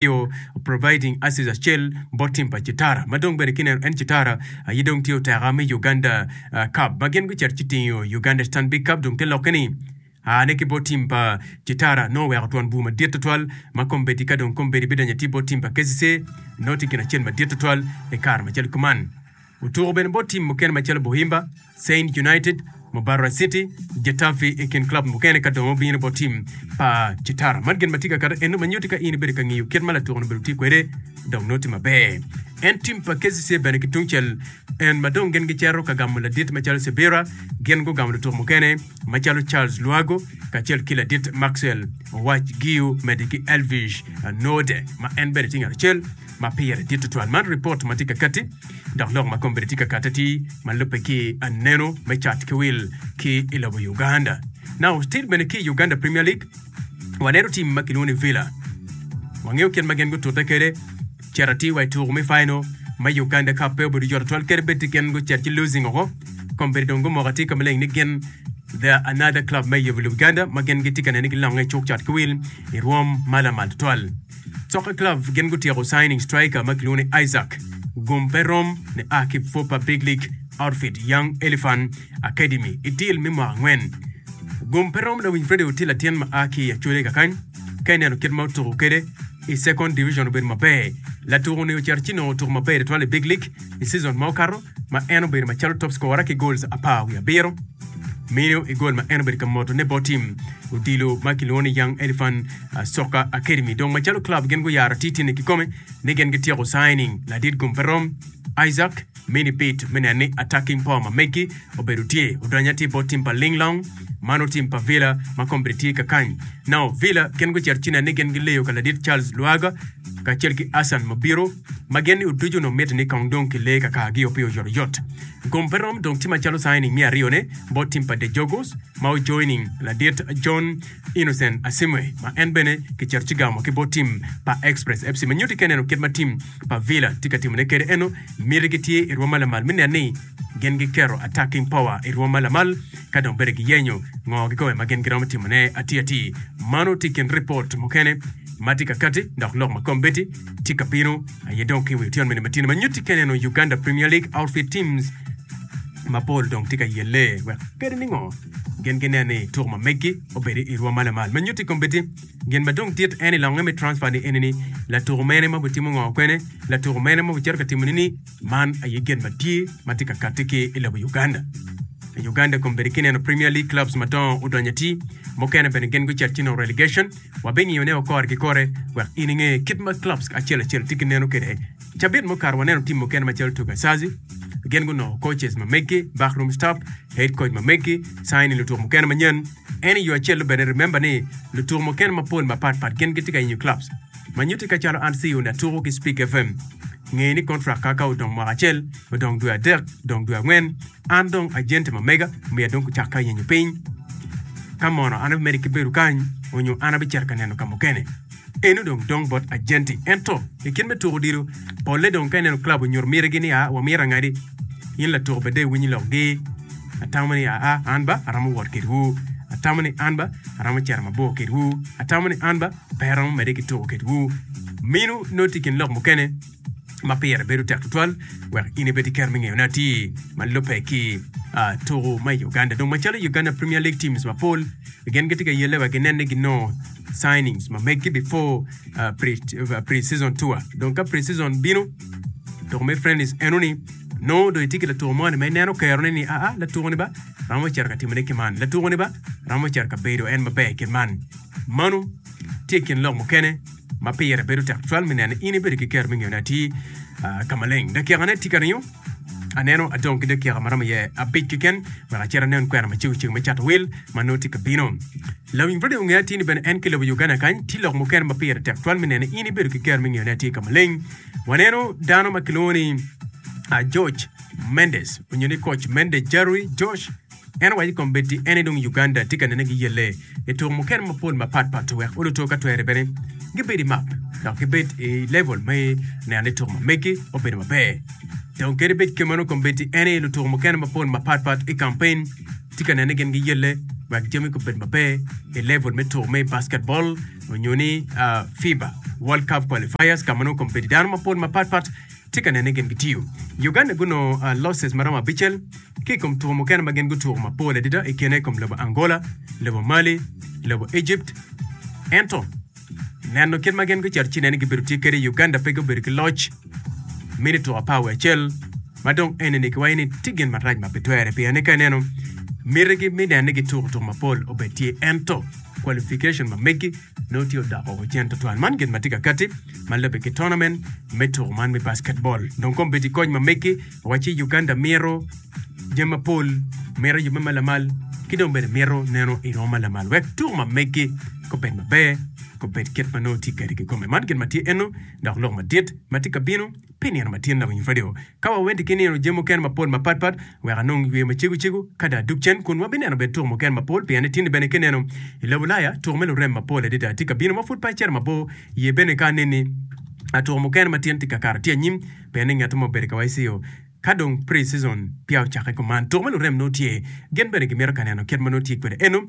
tye providing aces acel bot team pa Kitara ma dong bene ki neno en Kitara aye dong tye oteka me Uganda cup ma gin gucito ci tingo Uganda Stanbic cup dong te lokke ni aa ne ki bot team pa Kitara nongo oweko twon bur madit tutwal ma kombeddi ka dong kombeddi bidonyo atir bot team pa KCC nongo tye gin acel madit tutwal i kare macalo kuman. Otuko bene bot tim mukene macalo Bohimba, Saint United, Mubarra City, Getafe i kin club mukene ka dong obino bot tim pa Chitara. Man gin ma tye ka kato eno ma nyuti ka in ibedo ka ngiyo kit ma latuko-ni obedo tye kwede dok nongo tye maber. En tim pa KCC bene ki tungcel en ma dong gin gicito ka gamo ladit macalo Sibira gin gugamo lutuko mukene macalo Charles Lwago kacel ki ladit Maxwell Owac Giu mede ki Elvish Node ma en bene tye ngat acel ma pire dit tutwal. Man ripot ma tye ka kati dok lok ma kombeddi tye ka kate ti ma lubbe ki aneno me cat ki wil ki i lobo Uganda. Now still bene ki Uganda Premier League waneno tim ma kilwongo ni Villa wangeyo kit ma gin gutute kede Cito atir wa i tuku me Final ma Uganda Cup pe obedo yoto twal kadi bed ti gin gucito ci losing oko. Kombeddi dong gumoko atir ka maleng ni gin The Another Club me Yobe Lubganda ma gin gitye ka nene ki longe i cuk cat ki wil i rwom ma lamal tutwal. Soccer Club gin gutyeko signing striker ma kilwongo ni Isaac Gum pe rom ni a ki Fupa Big League Outfit Young Elephant Academy i deal me mwaka angwen. Gum pe rom lawiny Freddy Oti latin ma a ki i Acholi kakany ka ineno kit ma otuku kede. i Second Division obedo maber. Latuku-ni ocito ci nongo tuku maber tutwal i Big League i season ma okato ma en obedo macalo top scorer ki goals apar wiye abiro. Mino i goal ma en obedo ka motone bot tim odilo ma kilwongo ni Young Elephant ah, Soccer Academy. Dong macalo club gin guyaro atir-tirne kikome ni gin gityeko signing ladit gum pe rom, Isaac Mini bit me neno ni attacking four ma megi obedo tye odonyo atir bot tim pa Ling Long ma nongo tim pa Villa ma kombeddi tye ka kany. Nongo Villa gin gucito ci neno ni gin gileyo ka ladit Charles Luaga kacel ki Hassan Mabiro ma gin ni oducu nongo mitte ni kong dong kilee ka kargio pi oyot oyot. Gom pe rom dong ci macalo signing me aryo ne bot tim pa De Jogos ma ojoining ladit John Innocent Asimwe ma en bene kicito ci gamo ki bot tim pa Express FC ma nyutti keneno kit ma tim pa Villa tye ka timone kede eno, mitigi tye i rwom ma lamal me nen ni gin giketo attacking power i rwom ma lamal ka dong bene giyenyo ngo gikobe ma gin giromo timone atir atir. Mano tye i kin ripot mukene ma tye ka kati dok lok ma kombeddi tye ka bino aye dong ki i wi otyen mene matino ma nyutti kene eno Uganda Premier League outfit teams mapol dong tye ka yelle wek kede ni ngo gin ginen ni tuko ma meggi obedi i rwom ma lamal ma nyutti kombeddi. Gin ma dong tit en i longe me transfer ni eni ni latuku mene ma obitimo ngo kwene latuku mene ma obicito ka timo ni ni man aye gin ma tye ma tye ka kati ki i lobo Uganda. I Uganda kombedi kineno Premier League clubs ma dongo odonyo ati mukene bene gin gucito ci nongo relegation wa bingiyo ne o kore ki kore wek in inge kit ma clubs acel acel tye ki neno kwede. Cabit mukato waneno team mukene ma calo Tugasazi gin gunongo coaches ma meggi, backroom staff, head coach ma meggi, signing lutuku mukene manyen. En i yo acel-lu bene, remember ni lutuku mukene mapol mapat pat gin gitye ka yenyo clubs. Ma nyutti ka calo an CEO ni atuku ki Speak FM, ngeye ni contract kaka odong mwaka acel, odong dwe adek, odong dwe angwen, an dong agent ma mega omiya dong kucakke yenyo piny. Ka mono an abimedo ki bedo kany, onyo an abicito ka neno ka mukene. Eno dong dong bot agenti. Ento, i kit me tuko odilo, polle dong ka ineno club onyuto mitigi ni aa wamito angadi, in latuko bed dong iwinyi lok gi, Atamo ni aa an ba aromo wot kedwu. Atamo ni an ba aromo cito mabor kedwu. Atamo ni an ba pe aromo medde ki tuko kedwu. Minu nongo tye i kin lok mukene. ma pire bedo tek tutwal wek in ibed ki kero me ngeyone atir ma lubbe ki ah, tuku ma i Uganda. Dong macalo Uganda Premier League teams mapol gin gitye ka yelle wek ginen ni ginongo signings ma meggi before ah, pre- ah, pre-season tour. Dong ka pre-season bino, tuku me friendlies eno ni nongo do itye ki latuko mo ni ma ineno kerone ni aa latuko ni ba ramo cito ka timone ki man latuko ni ba ramo cito ka bedo en maber kit man mano tye kin lok mukene ma pire bedo tek cwal me nene in ibedo ki kero me ngeyone atir ka maleng. Dakikane tye ka ringo, aneno adong ki dakika ma romo iye abic keken wek acit anen kwena ma cego ceng me cato wil ma nongo tye ka bino. Lawiny radio ongeyo atir ni bene en ki i lobo Uganda kany tye lok mukene ma pire tek cwal me nene in ibedo ki kero me ngeyone atir ka maleng. Waneno dano ma kilwongo ni George Mendes onyo ni Coach Mendes Jerry Josh En owaco kombeddi en aye dong Uganda tye ka nene gi yelle i tuko mukene mapol mapat pat wek oluto ka twere bene gibed i map dok gibed i level me neno ni tuko ma megi obedo maber. Dong kadi bed kemeno kombeddi en aye lutuko mukene mapol mapat pat i kampen tye ka nene ni gin giyelle wek jami gubed maber i level me tuko me basketball onyo ni uh, FIBA World Cup qualifiers ka ma nongo kombeddi dano mapol mapat pat Tye ka nene ni gin gitiyo i Uganda gunongo losses maromo abicel ki i kom tuko mukene ma gin gutuko mapol adada i kine i kom lobo Angola, lobo Mali, lobo Egypt. Ento, neno kit ma gin gucito ci nene gibedo tye kede i Uganda pe gubedo ki loc me ni tuko apar wiye acel ma dong eni ni kiwaco ni tye gin marac ma pe twere pien ni ka ineno mitigi me neno ni gituko tuko mapol obed tye ento qualification ma megi Nongo tye odoko cen tutwal. Man gin ma tye ka katti ma lubbe ki tournament me tuko man me basketball. Dong kombeddi kony ma meggi wacci Uganda mito jami mapol, mito yubbe ma lamal ki dong bene mito neno i romo ma lamal wek tuko ma meggi gubed maber, gubed kit ma nongo tye kadi kikome. Man gin ma tye eno dok lok madit ma tye ka bino. pi nino matin dok winyo redio. Ka wawenti ki nino jami mukene mapol mapatpat, wek anong yweyo macego cego ka dong adug cen kun wabineno bene tuko mukene mapol pien ni tinni bene ki neno i lobo Ulaya tuko me lurem mapol adada tye ka bino ma pud pe acito mabor iye bene ka aneni tuko mukene matin tye ka kato tye anyim pien ni ngette ma obedo ka YCO ka dong pre-season peya ocakke kuman tuko me lurem nongo tye gin bene gimito ka neno kit ma nongo tye kwede eno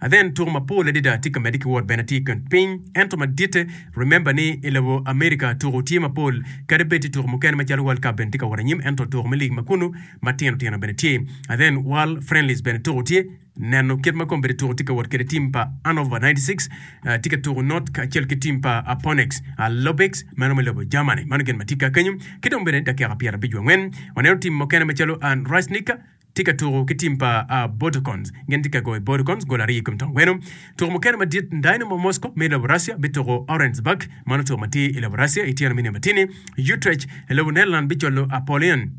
Athen tuko mapol adada tye ka medde ki wot bene tye i kin piny ento maditte remember ni i lobo America tuko tye mapol kadi bed tye tuko mukene macalo world cup bene tye ka wot anyim ento tuko me league makunu matino tino bene tye athen world friendlies bene tuko tye neno kit ma kombeddi tuko tye ka wot kede team pa Annover 96 tye ka tuko not kacel ki team pa Aponex Alobix meno me lobo Germany mano gin ma tye ka kenyo ki dong bene dakika pyera abic wa ngwen waneno team mukene macalo an Rajnika tye ka tuko ki tim pa Bourkons. Gin tye ka goyo Bourkons goli aryo i kom tong gweno. Tuko mukene madit, Dynamo Moscow me lobo Russia bituko Orenburg, mano tuko ma tye i lobo Russia, ityeno me nino matini. Utrecht i lobo Netherland bicwalo Apollyon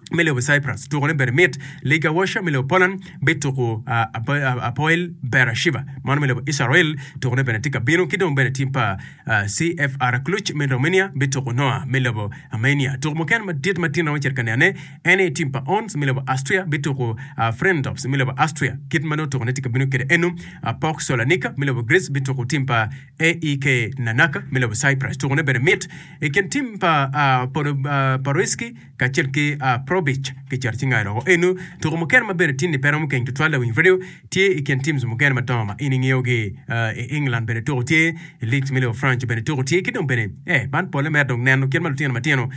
me lobo Cyprus, tukone bene mit. Legia Warsaw me lobo Poland bituko Hapoel Beersheba, mano me lobo Israel, tukone bene tye ka bino. Ki dong bene tim pa CFR Cluj me Romania bituko Noa me lobo Armenia. Tuko mukene madit ma tin romo cito ka nene, en aye tim pa Ons me lobo Austria bituko Frendorfs me lobo Austria, kit ma nongo tuko ne tye ka bino kwede eno. Pok Solanika me lobo Greece bituko tim pa AEK Larnaca me lobo Cyprus. Tuko ne bene mit i kin tim pa Podoporoyski kacel ki Probic. Kicato cinga loko eno. Tuko mukene ma bene tye ni pe romo keny tutwal lawiny radio Tye i kin teams mukene madongo ma in ingeyo gi i England bene tuko tye i leagues me lobo Franco bene tuko tye ki dong bene eh man pole mere dong neno kit ma lutino matino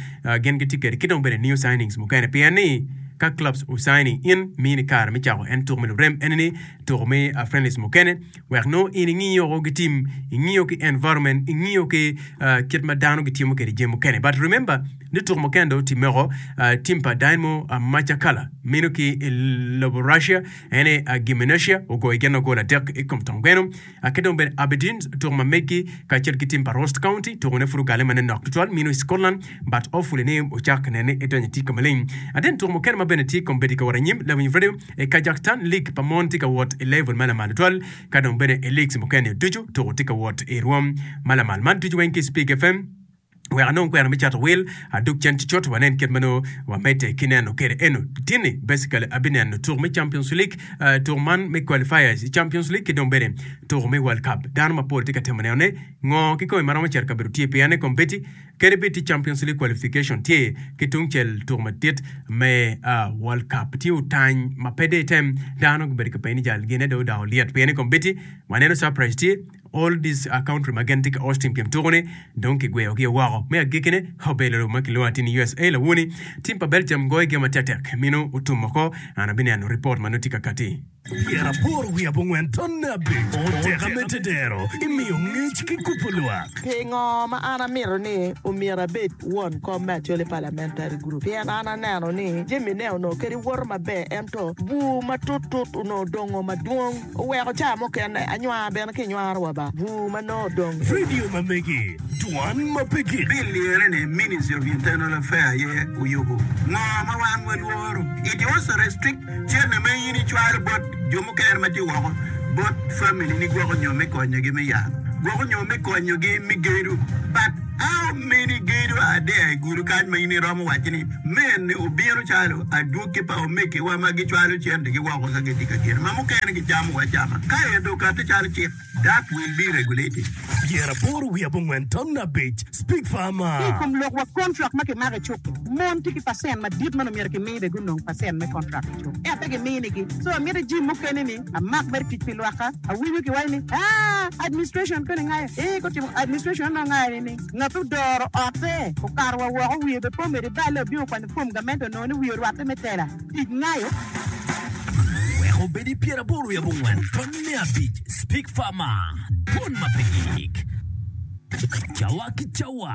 gin gitye kwede ki dong bene new signings mukene pien ni ka clubs o signing in mini kare me cako en tuko me lurem eni ni tuko me friendlies mukene wek nongo in ingiyo o gi team ingiyo ki environment ingiyo ki kit ma dano gitimo kwede jami mukene but remember ni tuko mukene dong timeko team pa Dynamo Macakala meno ki i lobo Russia En aye Agimenashia ogoyo gin ma gol adek i kom tong gweno, ki dong bene Aberdeen, tuko ma meggi, kacel ki tim pa Ross County. Tukone pud ogalle ma nen nok tutwal mino i Scotland, but hopefully ni wucak nene ni edonyo i tika maleng. Aden tuko mukene ma bene tye kong bedo ka wot anyim Levin Vredo i Kazakhstan League pa mon tye ka wot i level ma lamal tutwal, ka dong bene i leagues mukene ducu tuko tye ka wot i rwom ma lamal. Man ducu weng ki Spig FM. wek anong kwena me cato wil adug cen ki coto wanen kit ma nongo wamedde ki neno kede eno. Tini basically abineno tuku me Champions League, uh, tuku man me qualifiers i Champions League ki dong bene tuku me World Cup. Dano mapol tye ka temo neno ne ngo kikome ma romo cito kabedo tye pien ne kombeddi kede bed tye Champions League qualification tye ki tungcel tuku madit me uh, World Cup. Tye otany ma pe de item dano gubedo ka peni jal gine do odao liet pien ne kombeddi waneno surprise tye All These Are Country ma gin tye ki Austin pien tuko-ni dong kigweyogi woko. Me agekkine, Obelolo ma kilwongo atir ni USA lawoni, tim pa Belgium goyo gem atektek, mino otum oko. An abineno ripot ma nongo tye ka kati. Myero apor wi abongwen tonne abic oteka me tedero i miyo ngec ki kubo lwak. Pingo ma an amito ni omyero abed won kom me Acholi Parliamentary Group? Pien an aneno ni jamine onongo kadi woto maber ento bur matut tut onongo dongo madwong. Oweko caa mukene anywar bene ki nywaro wa ba bur ma nongo odong i. Radio ma megi, dwan ma pe gik. Bill liyere ni Ministry of Internal Affair aye oyubu ngo ma wan wa lworo. It also restrict cene ma in icwalo bot jo mukene ma tye woko bot family ni gwoko nyo me konyo gi me yalo gwoko nyo me konyo gi me gedo but. A omini gedo adea i gudo kany ma in iromo wacci ni, 'Mene obino calo adwogi pa omegiwa ma gicwalo centigi woko ka gitye ka geno ma mukene gicamo acama, ka ento okatte calo cik, that will be regulated. Tyer aboro wiye abongwen tamna abic, Speak farmer. Ki i kom lok wa kontrak ma kimako i cuk-ki, mon tye ki pacent madit ma nongo myero kimi bene gunong pacent me kontrak i cuk, ento pe gimini-gi. So, amyero ijim mukene ni, Amak bed tic pi lwakka. Awinyo ki waco ni, Aa, administration pene ngayo. Ee, ko timo administration onongo ngayo ni ni, ngat ma odoro otte okato wa woko wiye be pe omedo ibale obino okwanyo fom gament onongo ni wiye orwatte me tela. Tic ngayo. Wek obed i pyeraboro i abongwen tony me abic, Speak Farmer, Dwon ma pe gik. Cawa ki cawa.